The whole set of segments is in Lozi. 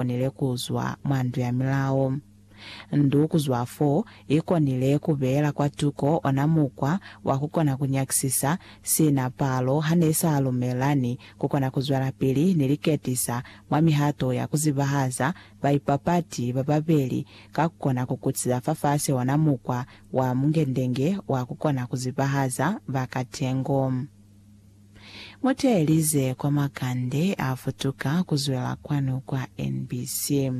konile ku zwa mwa ndu ya milao. Ndu ku zwa fo i konile ku beela kwa tuko ona mukwa wa ku kona ku nyakisisa sina palo ha ne sa lumelani ku kona ku zwelapili ni liketisa mwa mihato ya ku zibahaza baipapati ba babeli ka ku kona ku kutisa fafasi ona mukwa wa mungendenge wa ku kona ku zibahaza ba katengo. Muteelize kwa makande a futuka kuzwela kwanu kwa NBC.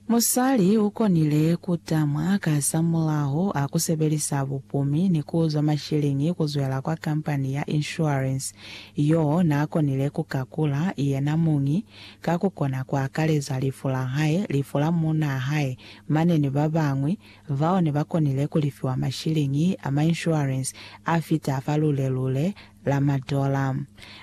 Musali ukonile kutamwa kasamulaho a kusebelisa bupumi ni kuuzwa mashilingi kuzwela kwa kampani ya insurance yo naakonile kukakula yena muñi ka kukona kuakaleza lifu lahae, lifu la muunaa hae, mane ni babañwi Bao ne ba konile ku lifiwa mashiliñi a ma inshuwarensi a fita fa lule-lule la madola.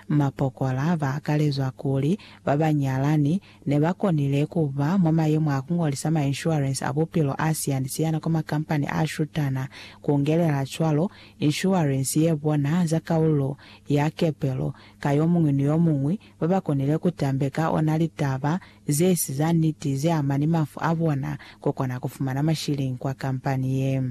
Mapokola ba akalezwa kuli ba ba nyalani ne ba konile ku ba mwa mayemo a ku ngolisa ma inshuwarensi a bupilo a siyani-siyana kwa makampani a shutana, ku ngelela cwalo inshuwarensi ye bona za kaulu ya kepelo ka yo muñwi ni yo muñwi ba ba konile ku tambeka ona litaba ze si za niti ze ama ni mafu a bona, ko kona ku fumana mashilingi kwa kampani ye.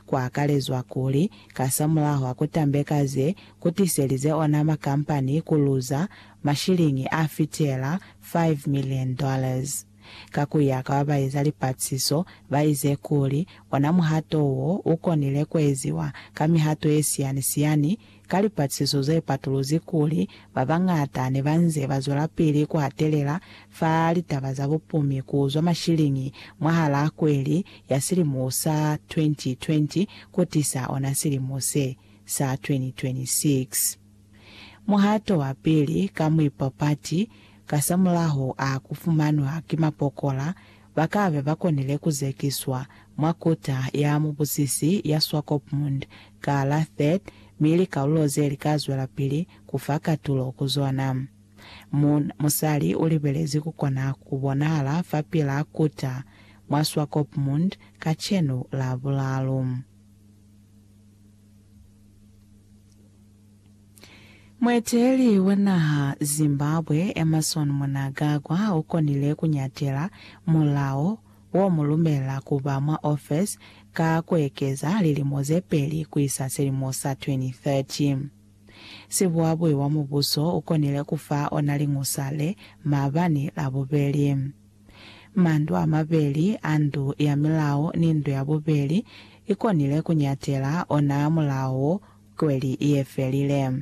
Ku akalezwa kuli, kasamulaho a ku tambeka ze ku tiselize ona makampani ku luza mashilingi a fitela five million dollars. Ka ku ya ka ba ba eza lipatlisiso, ba ize kuli ona muhato wo u konile ku eziwa ka mihato ye siyani-siyani Ka lipatisiso ze patuluzi kuli ba bañata ne ba nze ba zwelapili ku hatelela fa litaba za bupumi ku zwa mashiliñi mwahalaa kweli ya silimo sa 2020 ku tisa ona silimo se, sa 2026. Muhato wa pili ka muipapati kasamulaho a ku fumanwa ki mapokola ba ka be ba konile ku zekiswa mwa Kota ya Mubusisi ya Swakopmund ka la 3rd mi likalulo ze li ka zwelapili ku fa katulo ku zona. Mu, musali u libelezi ku kona ku bonahala fapil'a Kota mwa Swakopmund kacenu Labulalu. Mueteleli wa naha Zimbabwe, Emmerson Mnagagwa ukonile kunyatela mulao womulumela kuba mwa ofesi ka kuekeza lilimo zepeli kuisa silimo sa 2030. Sibuabui wa mubuso ukonile kufa ona liñusa le maabani Labubeli. Mandu amabeli a Ndu ya Milao ni Ndu ya Bubeli ikonile kunyatela ona mulao wo Kweli ye felile.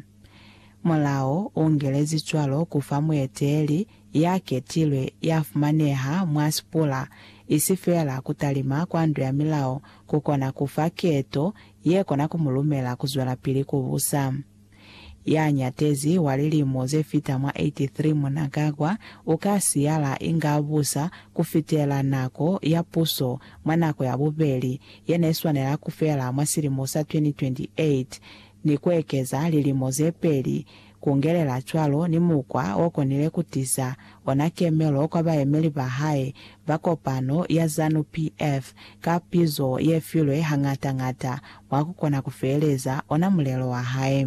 Mulao u ngelezi cwalo ku fa mueteeli ya ketilwe ya fumaneha mwa sipula, isi feela ku talima kwa ndu ya milao ku kona ku fa keto ye kona ku mu lumela ku zwelapili ku busa. Ya nyatezi wa lilimo ze fita mwa 83 Mnangagwa u ka siyala inge a busa ku fitela nako ya puso mwa nako ya bubeli ye ne swanela ku fela mwa silimo sa 2028 ni ku ekeza lilimo ze peli, ku ngelela cwalo ni mukwa o konile ku tiza ona kemelo kwa bayemeli ba hae ba kopano ya Zanu PF ka pizo ye filwe hañata-ñata mwa ku kona ku feeleza ona mulelo wa hae.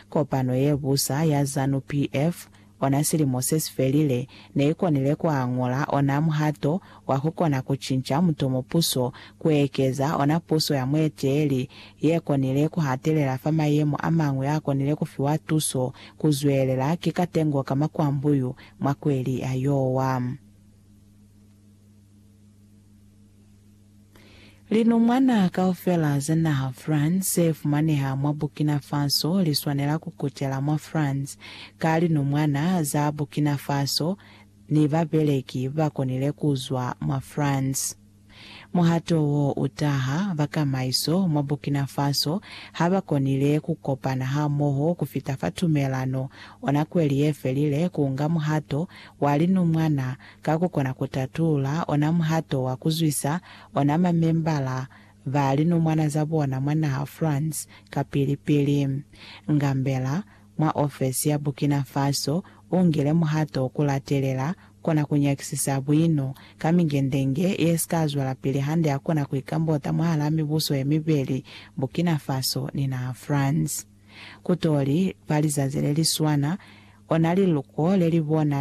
Kopano ye busa ya Zanu PF ona silimo se si felile ne i konile ku añola ona muhato wa ku kona ku cinca mutomo puso ku ekeza ona puso ya mueteleli ye konile ku hatelela fa mayemo a mañwi a konile ku fiwa tuso ku zwelela ki katengo ka makwambuyu mwa kweli ya Iowa. Linumwana kaufela za naha France ze fumaneha mwa Burkina Faso li swanela ku kutela mwa France ka linumwana za Burkina Faso ni babeleki ba konile ku zwa mwa France. Muhato wo u taha, bakamaiso mwa Burkina Faso ha ba konile ku kopana hamoho ku fita fa tumelano ona kweli ye felile ku nga muhato wa linumwana ka ku kona ku tatula ona muhato wa ku zwisa ona mamembala ba linomwana za bona mwa naha France kapili-pili. Ngambela, mwa ofesi ya Burkina Faso, u ngile muhato wa ku latelela kona ku nyakisisa buino ka mingendenge ye si ka zwelapili hande ya kona ku ikambota mwahal'a mibuso ye mibeli, Burkina Faso ni naha France. Ku t'o li fa lizazi le li swana, ona liluko le li bona